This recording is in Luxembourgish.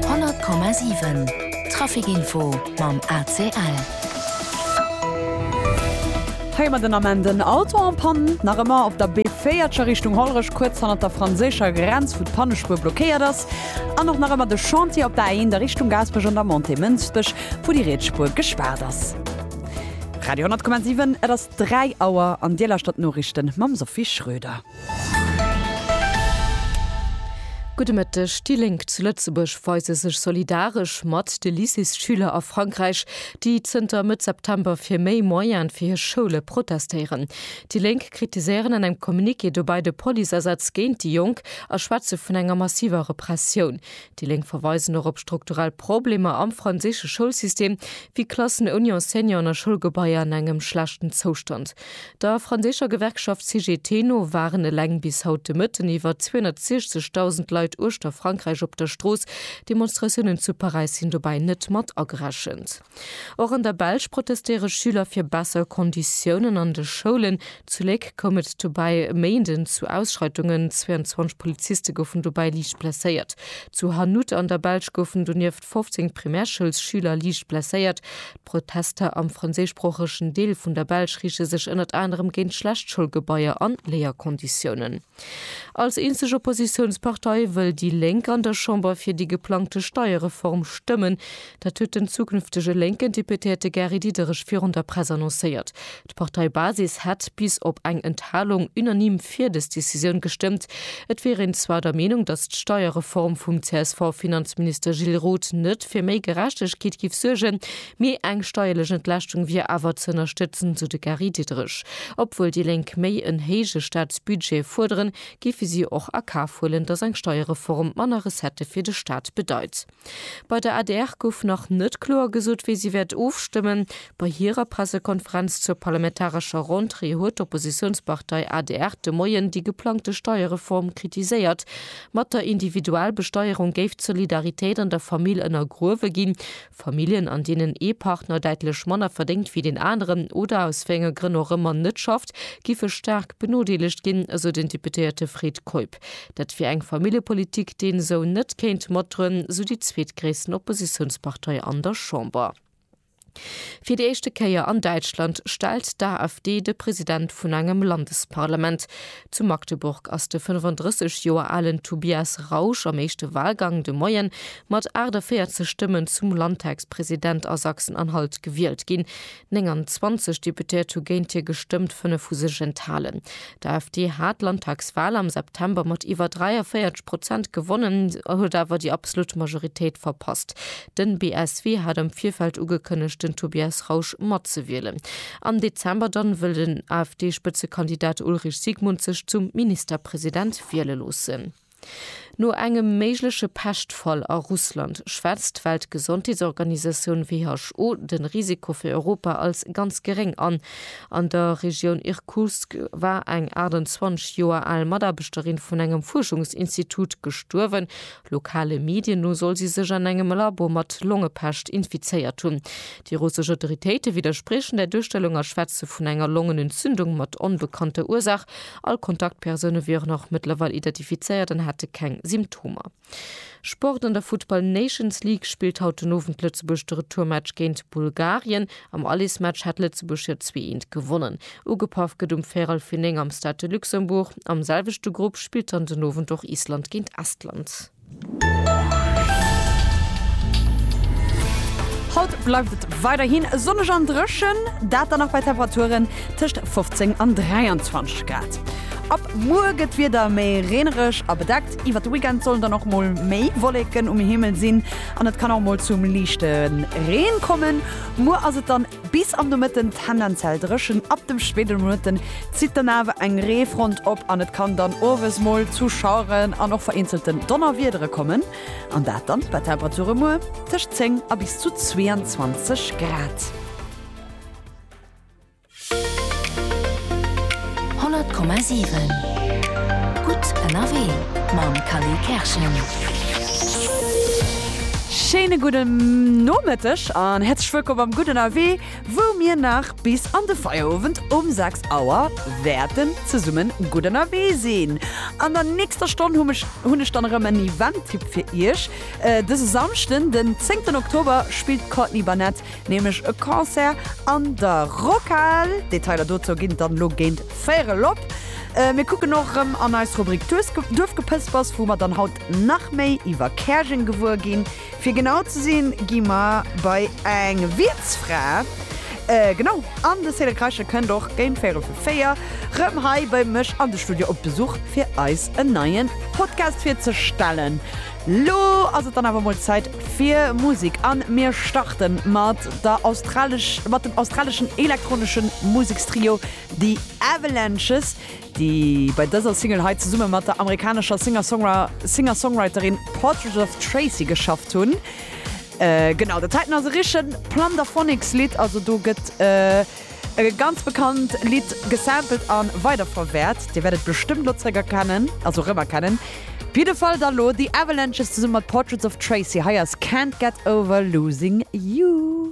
100,7 Trafic Info mam ACL. Hei mat den Ament en Auto en panne, nach ëmmer op der B4 Richtung Hollerech kuerz hannert der franséischer Grenz, wou d'Pannespuer blockéiert ass. An och nach ëmmer de Chantier op der A1 der Richtung Gaasperech an der Montée Mënsbech, wou déi riets Spuer gespaart ass. Radio 10,7 Et ass 3 Auer an Dir lauschtert d'Noriichten mam Sophie Schröder. Gudde Mëtteg, déi Lénk zu Lëtzebuerg weise sech solidaresch mat de Lycéesschüler a Frankräich, déi zënter Mëtt September fir méi Moyene fir hir Schoule protestéieren. Déi Lénk kritiséieren an engem Communiqué dobäi de Policeasätz géint déi Jonk a schwätze vun enger massiver Repressioun. Déi Lénk verweisen och op strukturell Problemer am franséische Schoulsystem, wéi Klassen ouni Enseignanten a Schoulgebaier an engem schlechten Zoustand. Der franséischer Gewerkschaft CGT no waren eleng bis haut de Mëtten iwwer 260.000 Leit uechter Frankräich op der Strooss. Demonstratiounen zu Paräis sinn dobäi net mat agerechent. Och an der Belsch protestéiere Schüler fir besser Konditiounen an de Schoulen. Zu Léck koum et dobäi e Méinden zu Ausschreitungen, 22 Poliziste goufen dobäi liicht blesséiert. Zu Hannut an der Belsch goufen donieft. Protest 15 Primärschoulsschüler liicht blesséiert. D'Protester am franséischsproochegen Deel vun der Belsch riichte sech ënnert anerem géint schlecht Schoulgebaier an Léierkonditiounen. Als eenzeg Oppositiounspartei wëll déi Lénk an der Chamber fir déi geplangte Steierreform stëmmen. Dat huet den zukünftege lénken Deputéierte Gary Diderich virun der Press annoncéiert. D'Parteibasis hätt bis op eng Enthalung unanime fir dës Decisioun gestëmmt. Et wier een zwar der Meenung, datt d'Steierreform vum CSV-Finanzminister Gilles Roth net fir méi Gerechtegkeet géif suergen, mee eng steierlech Entlaaschtung wier awer ze ënnerstëtzen, sou de Gary Diderich. Obwuel déi Lénk méi en héije Staatsbudget fuerderen, géife si och a Kaf huelen, datt eng Steierreform manner Recettë fir de Staat bedeit. Bei der adr gouf nach net kloer gesot, wéi si wäert ofstëmmen. Bei hirer Pressekonferenz zur parlamentarescher Rentrée huet d'Oppositiounspartei adr de Moien déi geplangte Steierreform kritiséiert. Mat der Individualbesteierung géif d'Solidaritéit an der Famill ënnergruewe ginn. Familljen, an deenen ee Partner däitlech manner verdéngt wéi deen aneren oder aus wéi enge Grënn och ëmmer net schafft, géife staark benodeelegt ginn, esou den Deputéierte Fred Keup. Prinzip. Dat wier eng Familljepolitik, déi een esou net kéint matdroen, sou déi zweetgréissten Oppositiounspartei an der Chamber. Fir déi éischte Kéier an Däitschland stellt d'AfD de President vun engem Landesparlament. Zu Magdeburg ass de 35 Joer alen Tobias Rausch am éischte Walgang de Moie mat 48 Stëmmen zum Landtagspresident a Sachsen-Anhalt gewielt ginn. 29 Deputéiert hu géint hie gestëmmt, 5 hu sech enthalen. D'AfD hat d'Landtagswal am September mat iwwer 43 Prozent gewonnen, huet awer déi absolut Majoritéit verpasst. Den BSW hat am Virfeld ugekënnegt, den Tobias Rausch matzewielen. Am Dezember dann wëll den AfD-Spëtzekandidat Ulrich Siegmund sech zum Ministerpresident wiele loossen. No engem méigleche Peschtfall a Russland schwätzt d'Weltgesondheetsorganisatioun who de Risiko fir Europa als ganz geréng an. An der Regioun Irkutsk war eng 28 Joer al Mataarbechterin vun engem Fuerschungsinstitut gestuerwen. Lokale Medien no soll si sech an engem Labo mat Longepescht infizéiert hunn. Déi russesch Autoritéite widderspriechen där Duerstellung a schwätze vun enger Longenentzündung mat onbekannter Ursaach. All Kontaktpersoune wieren och mëttlerweil identifizéiert an hätte keng Symptomer. Sport An der Futtball Nations League spillt haut den Owend Lëtzebuerg de Retourmatch géint Bulgarien. Am Allesmatch hat Lëtzebuerg jo zwee eent gewonnen. Ugepaff gëtt um Véirel fir 9 am Stade de Luxembourg. Am selwechte Grupp spillt dann den Owend och Island géint Estland. Haut bleift et weiderhin sonneg an dréchen, dat dann nach bei Temperaturen tëscht 15 an 23 Grad. Ab muer gëtt d'Wieder méi reenereg a bedeckt, iwwert de Weekend sollen dann och mol méi Wolleken um Himmel sinn an et kann och mol zum liichte Reen kommen. Muer ass et dann. Bis am Nomëtten tendenziell dréchen, ab dem spéiden Nomëtten zitt dann awer eng Reefront op an et kann dann owes mol zu Schaueren an och vereenzelten Donnerwiedere kommen, an dat dann bei Temperature muer tëscht 10 a bis zu 22 Grad. 100,7 Gutt ënnerwee mam Khalil Kerschen. Schéine gudden Nomëtteg an häerzlech wëllkomm beim Gutt ënnerwee, wou mir nach bis an de Feierowend um 6 Auer wäerten zesummen gutt ënnerwee sinn. An der nächster Stonn hu mech, hunn ech dann erëm en Event-Tipp fir Iech. Dëse Samschden, den 10 Oktober spillt d'Courtney Barnett nämlech e Concert an der Rockhal. Detailer dozou ginn et dann elo géint véier erop. Mir kucken och erëm an eis Rubrik Duerfgepëspers, wou mer dann haut nach méi iwwer Käerjeng gewuer ginn. Fir genau ze sinn, gi mer bei eng Wiertsfra, genau, an de Cédric Reichel kënnt och géint véierel vu véier erëm hei bei mech an de Studio op Besuch, fir eis en neie Podcast virzestellen. Lo ass et dann awer mol Zäit fir Musek an mir starte mat der australesch, mat dem australeschen elektroneschen Musekstrio The Avalanches, déi bei dëser Single hei zesumme mat der amerikanescher Singer-Songwra, Singer-Songwriterin Portrait of Tracy geschafft hunn. Genau, dat heiten ass e richtegen Plunderphonics-Lidd, also do gëtt. E ganz bekannt Lidd gesampelt an weiderverwäert. Dir wäert et bestëmmt lo zréck erkennen, also rëm erkennen. Op jidde Fall da lo The Avalanches zesummen mat Portraits of Tracy. Hei ass Can't Get Over Losing You.